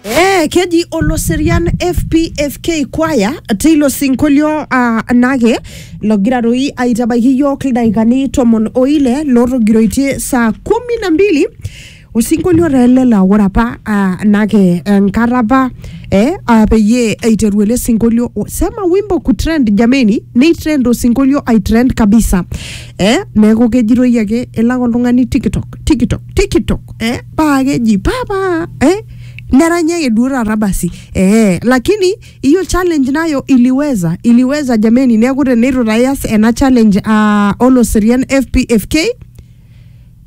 Eh, keji oloserian fpfk kwaya teilo sinkolio uh, nake logira doi aitabaiki yiok ildaikani tomon oile lotogiroitie saa kumi na mbili osinkolio taa ele laa ore apa uh, nake enkata apa eh, uh, peyie eiteru ele sinkolio sema wimbo kutrend jameni neitrend osinkolio aitrend kabisa eh? neeku kejitoi ake elak oltung'ani tiktok tiktok tiktok eh? paa keji papa eh? neranya ake duo taata basi eh, lakini hiyo challenge nayo iliweza iliweza jameni neeku teneitu tayas ena challenge uh, oloserian fpfk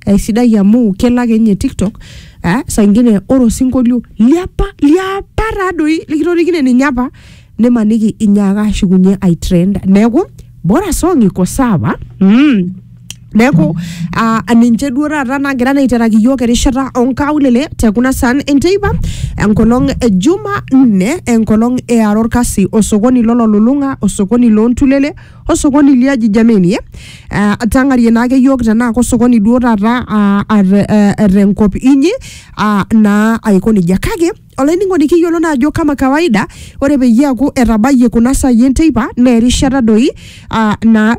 aisidai amu kelo ake ninye tiktok eh, saa ingine ore osinkolio liapa liapa taadoi likitorikine ninye apa nimaniki inyaaka ashukunye ai trend neeku bora song iko sawa mm. neeku ah, ninche duo taata nagira naa aiteraki iyiook erishata onkaulele te kuna san enteipa enkolong e juma nne enkolong eara orkasi osokoni lololulung'a osokoni loontulele osokoni liaji jameni eh? Ah, tang'arie naake iyiook tenaa kosokoni duo taata ah, ate- eh, eh, tenkop inyi ah, naa aiko nejia kake Olainining'oni kiyiolo naa ajo kama kawaida ore peyie eaku etabayie kuna saai enteipa naa erishata doi uh, naa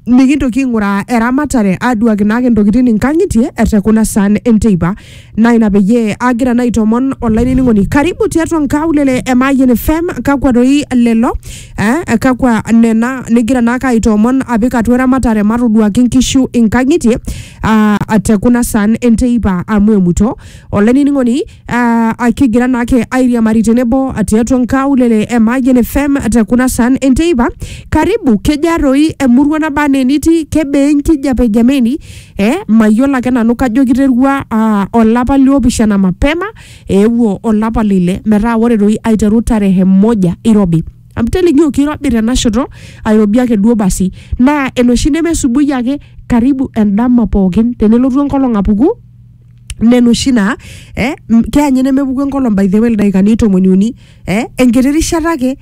mikintoki aing'uraa eramatare aduaki naake intokitin inkang'itie ete kuna saan enteipa naa ina peyie agira naa aitomon olainining'oni karibu tiatua nkaulele e Mayian FM kakwa doi lelo eh, kakwa nena nigira naake aitoomon apik atua eramatare matoduaki inkishu inkang'itie uh, te kuna saan enteipa amu emuto olainining'oni Ah, akigira naake airiamari tenebo tiatua nkaulele e Mayian FM te kuna san enteipa karibu kejaa toi emurua naba anaa enitii kebaa enkijape jameni eh, mayiolo ake nanu kajo kiterua ah, olapa liopishana mapema eewuo olapa lile metaa ore toi aiteru tarehe moja irobi amu telikio kirobi tenashoto airobi ake duo basi naa enoshi nemesubui ake karibu endama pookin tenelotu enkolong apuku nena oshi naa eh, m- keya ninye nemepuku enkolong by the way ildaikani tomoni uni eh, enkiti rishata ake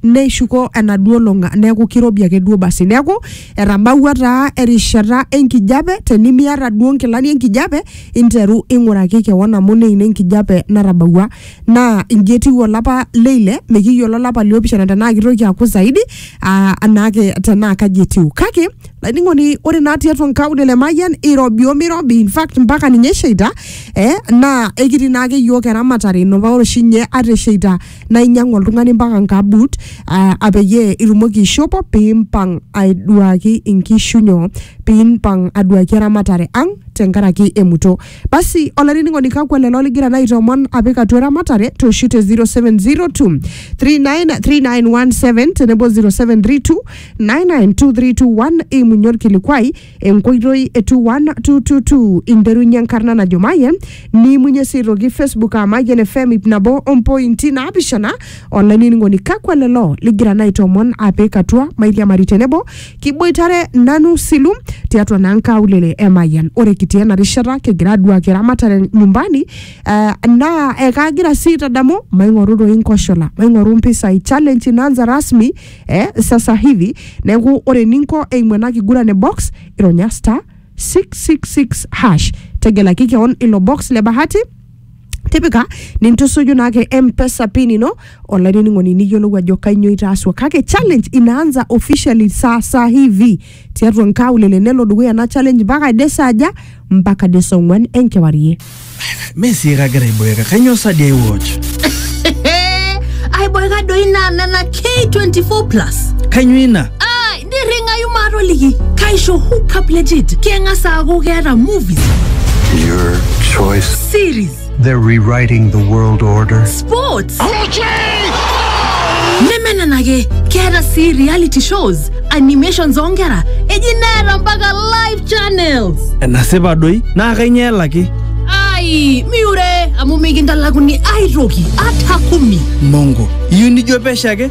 neishuko enaduo olong a- neeku kirobi ake duo basi neeku etabawua taa erishata enkijape tenimiata duo nkilani enkijape interu ing'uraki kewon amu ine ina enkijape natabawua naa inji etiu olapa leile mikiyiolo olapa liopishana tenaa kitoki aaku zaidi aa anaake tenaa kaji etiu kake laining'oni ore naa tiatua nkaulele e Mayian irobi omirobi in fact mpaka ninye esheita eh, naa ekitii naake iyiook eramatare ino paa ore oshi ninye ata esheita naa inyiang'u oltung'ani mpaka nkabut ah, ah, peyie itumoki aishopo piimpang aiduaki inkishu nyoo piimpang aduaki eramatare ang tenkaraki emuto Basi olainining'oni kakwa lelo ligira naa aitoomon apik atua eramatare tooshu te 0702 393917 tenebo 0732 992321 eimunye orkilikwai enkoitoi e 21222 interunye enkarna najo Mayian niimunye sii aitoki Facebook aa Mayian FM ip nabo ompointi naapishana olainining'oni kakwa lelo ligira naa aitoomon apik atua mairiamari tenebo Kiboitare nanu silu tiatua naa nkaulele e Mayian. Ore kitii ena rishata kigira aduaki eramatare nyumbani eh, naa ekagira sii aitadamu maing'oru doi nkoshola, maing'oru mpisai. Challenge inaanza rasmi eh, sasa hivi. Neeku ore eninko eimu ena kiguran e box, ironya star 666 hash. Tegelaki keon ilo box le bahati tipika nintusuju naake mpesa pin ino olainining'oni niyiolou ajo kainyoo itaasua kake challenge inaanza officially sasa hivi tiatua nkaulele nelo dukuya ena challenge mpaka ade saaja mpaka de saa ong'wan enkewarie Mee sii kagira aiboeka, kainyoo sa dii aiwatch? aiboeka doi naa nena k24 plus Kainyoo ina? nirringayu maatoliki kaisho hookup legit keng'as aaku keeta movies Your choice. series They're rewriting the world order. sports neme nena ake keeta sii reality shows animations oonkera eji neeta mpaka live channels enasipa doi naa kainyoo elaki ai miure amu mikintalakuni aitoki ata kumi mongo iyieu nijo pesho ake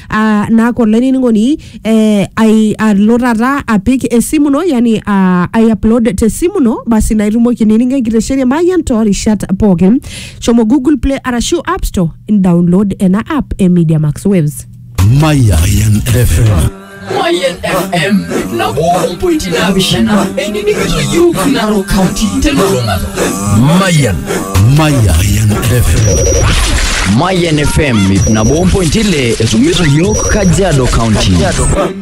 ah, naaku olainining'oni eh, ai- alo taata apik esimu ino yani ah, ai upload te simu ino basi naa itumoki nining enkitesheni e Mayian toorishat pookin shomo google play arashu app store download ena app e media max waves Mayan FM. Mayan FM na 1.7 Narok County telulung'ata Mayan Mayan FM Mayan FM ip nabo ompointi ile esumiso yiok Kajiado County